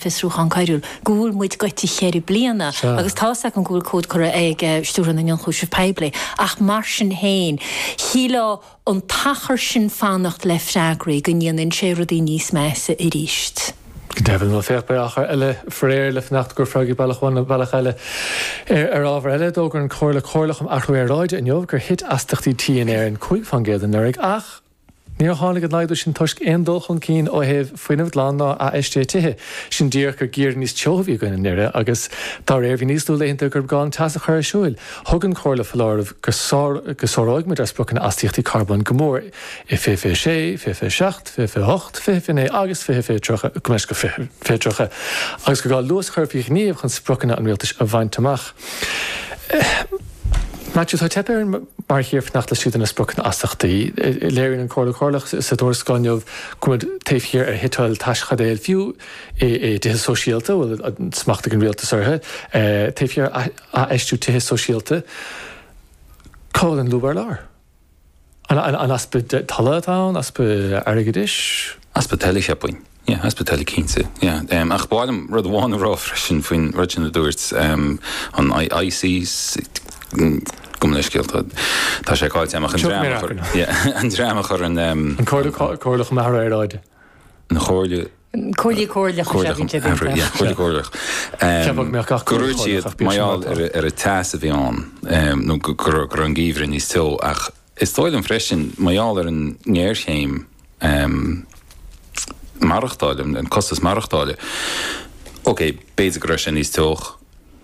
fiosrúchán coiriúil, go bhfuil muid gaibhte cheithre bliana agus tá's agam go bhfuil comhad curtha chuig Stiúrthóir na nIonchúiseamh Poiblí ach mar sin féin, shílfeá an t-achar sin fanacht le freagraí go ndéanann sé rudaí níos measa arís. Go deimhin, bhuel, féach, beidh achar eile faraor le fanacht go mbeidh freagraí bealach amháin nó bealach eile. Ar ábhar eile, d'fhógair an Chomhairle Comhairleach um Athrú Aeráide inniu gur thit astaíochtaí tí in Éirinn cúig faoin gcéad anuraidh ach, Níor tháinig an laghdú sin toisc aon dul chun cinn ó thaobh fuinneamh glan ná athfheistthe tithe. Sin díreach gur geimhreadh níos teo a bhí againn anuraidh agus dá réir bhí níos lú laethanta gur ghá an teas a chur ar siúl. Thug an Chomhairle foláireamh go sáróidh muid ár spriocanna astaíochtaí carbóin go mór i fiche fiche 6, fiche fiche 7, fiche fiche 8, fiche fiche 9 agus fiche 30 agus gur gá luas a chur faoi ghníomh chun spriocanna an Rialtais a bhaint amach. Maitiú, Tá teipthe orainn mar thír fanacht laistigh de na spriocanna astaíochtaí. Léiríonn an Chomhairle Chomhairleach sa tuarascáil inniu go bhfuil muid taobh thiar ar shuiteáil teaschaidéil fiú i dtithe sóisialta a bhfuil smacht ag an rialtas orthu, taobh thiar ar athfheistiú tithe sóisialta. Cá bhfuil an lúb ar lár? An easpa tola atá ann? Easpa airgeadais? Easpa tola, cheapfainn. Yeah, easpa tola cinnte. Yeah. Ach ba mhaith liom rud amháin a rá freisin faoin rud sin a dúirt an ICC. gabh mo leithscéal tá tá sé caillte agam an dream an dream a chur an An Chomhairle Chomhairleach um Athrú Aeráide. An Chomhairle Comhairle Comhairleach is ea bhí sé b'fhéidir. Comhairleach, yeah, Comhairle Comhairleach. Cheap mé gach Comhairle Comhairleach. Go raibh siad, mar gheall ar an teas a bhí ann, nó go raibh an geimhreadh níos teo ach is dóigh liom freisin mar gheall ar an ngéarchéim maireachtála, an costas maireachtála, okay, b'fhéidir go raibh sé níos teo.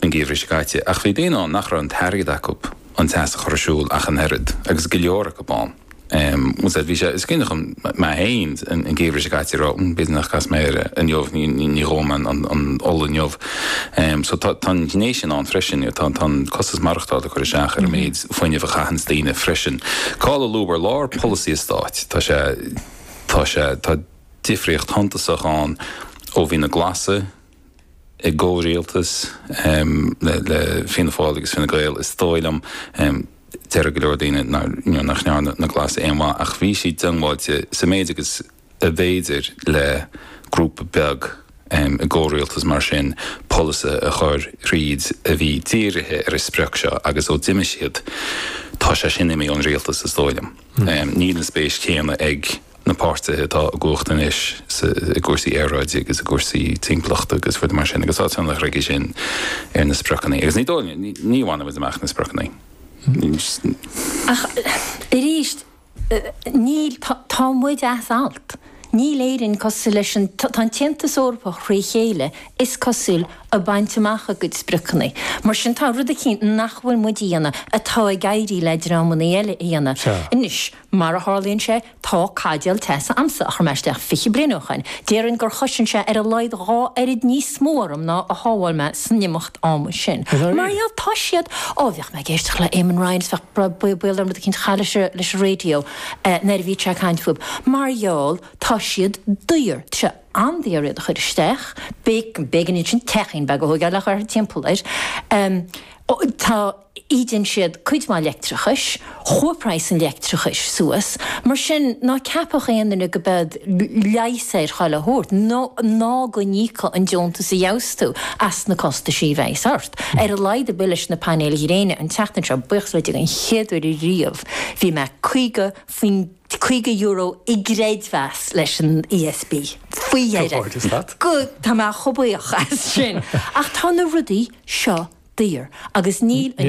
an geimhreadh seo caite, ach bhí daoine ann nach raibh an t-airgead acu an teas a chur ar siúl ach an oiread, agus go leor acu ann, bhuel, sea, bhí sé, is cinneadh chun, mé féin an geimhreadh seo caite a raibh, b'fhéidir nach gcasfaidh mé air inniu, ní dhófaidh mé an ola inniu, so tá an ghné sin ann freisin, tá an costas maireachtála ag cur isteach ar an méid fuinnimh a chaitheanns daoine freisin. Cá'il an lúb ar lár polasaí an Stáit? Tá sé, tá sé, tá difríocht shuntasach ann ó bhí na Glasaigh, i gcomhrialtas le Fianna Fáil agus Fine Gael is dóigh liom. Déarfadh go leor daoine nach ndearna na Glasaigh aon mhaith ach bhí siad diongbháilte sa méid agus ab fhéidir le grúpa beag i gcomhrialtas mar sin polasaithe a chur thríd a bhí dírithe ar an sprioc seo agus ó d'imigh siad tá sé sin imithe ón rialtas is dóigh liom. Níl an spéis chéanna ag. na páirtithe atá i gcumhacht anois i gcúrsaí aeráide agus i gcúrsaí timpeallachta agus rudaí mar sin agus tá tionchar aige sin ar na spriocanna agus ní dóigh liom, ní bhainfidh muid amach na spriocanna. Ach arís, níl, tá muid as alt, níl Éirinn cosúil leis an, tá an tAontas Eorpach thrí chéile, is cosúil, ag baint amach a gcuid spriocanna. Mar sin tá rud eicínt nach bhfuil muid a dhéanamh atá ag éirí le dreamanna eile a dhéanamh. Anois. Mar a tharlaíonn sé, tá caidéal teasa a'msa a chuir mé isteach fiche bliain ó shoin. Déarfainn gur chosain sé ar a laghad dhá oiread níos mó orm ná a shábháil mé san imeacht ama sin. Is ea, mar gheall, tá siad, ó, bhíodh mé ag éisteacht le Eamon Ryan is bheadh baol orm rud eicínt a chaitheamh leis an, leis an radio nuair a bhíodh sé ag caint fúb. Mar gheall, tá siad daor, tá sé an-daor iad a chur isteach, b'é, b'éigean ansin, teachín beag a thóigeáil thart timpeall air. Tá. ídeann siad cuid mhaith leictreachais, chuaigh praghas an leictreachais suas, mar sin ná ceapadh aon duine gurb iad leigheas ar chuile shórt, ná go n-íocfadh an deontas a gheobhas tú as na costaisí a bheas ort. Ar a laghad a bhuí leis na painéil ghréine an tseachtain seo, buíochas le Dia, an chéad uair riamh bhí mé caoga faoin, caoga euro i gcreidmheas leis an ESB, faoi dheireadh, tá mé chomh buíoch as sin, ach tá na rudaí seo daor agus níl an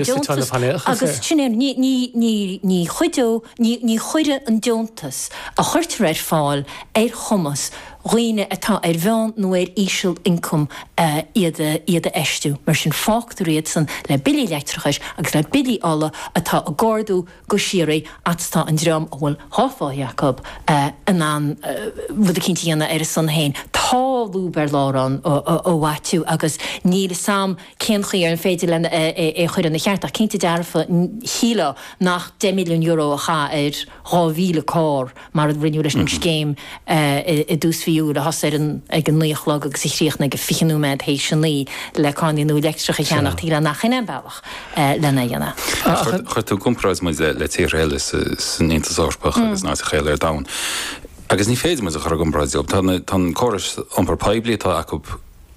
ní, ní, ní, ní chuirfidh an deontas a chuirtear ar fáil ar chumas dhaoine atá ar mheán nó ar íseal-ioncam iad, iad a fheistiú. Mar sin fágtar iadsan le billí leictreachais agus le billí ola atá ag ardú, go síoraí agus tá an dream a bhfuil dhá pháí acu in ann rud eicínt a dhéanamh ar a son féin. Tá lúb ar lár ann, a Mhaitiú, agus níl 'fhios a'm cén chaoi ar féidir len é a chur ina cheart ach cinnte dearfa shílfeá nach deich milliún euro a chaitheamh ar dhá mhíle carr mar a rinneadh leis an scéim i dtús mhí Iúil, a thosaigh ag a naoi a chlog agus a chríochnaigh ag fiche nóiméad théis a naoi, le carrannaí nua leictreacha a cheannach, tuige nach shin é an bealach len é a dhéanamh? Chuir tú i gcomparáid muid le tíortha eile san Aontas Eorpach agus in áiteacha eile ar domhan, agus ní féidir muid a chur i gcomparáid leo. Tá an córas iompar poiblí atá acu,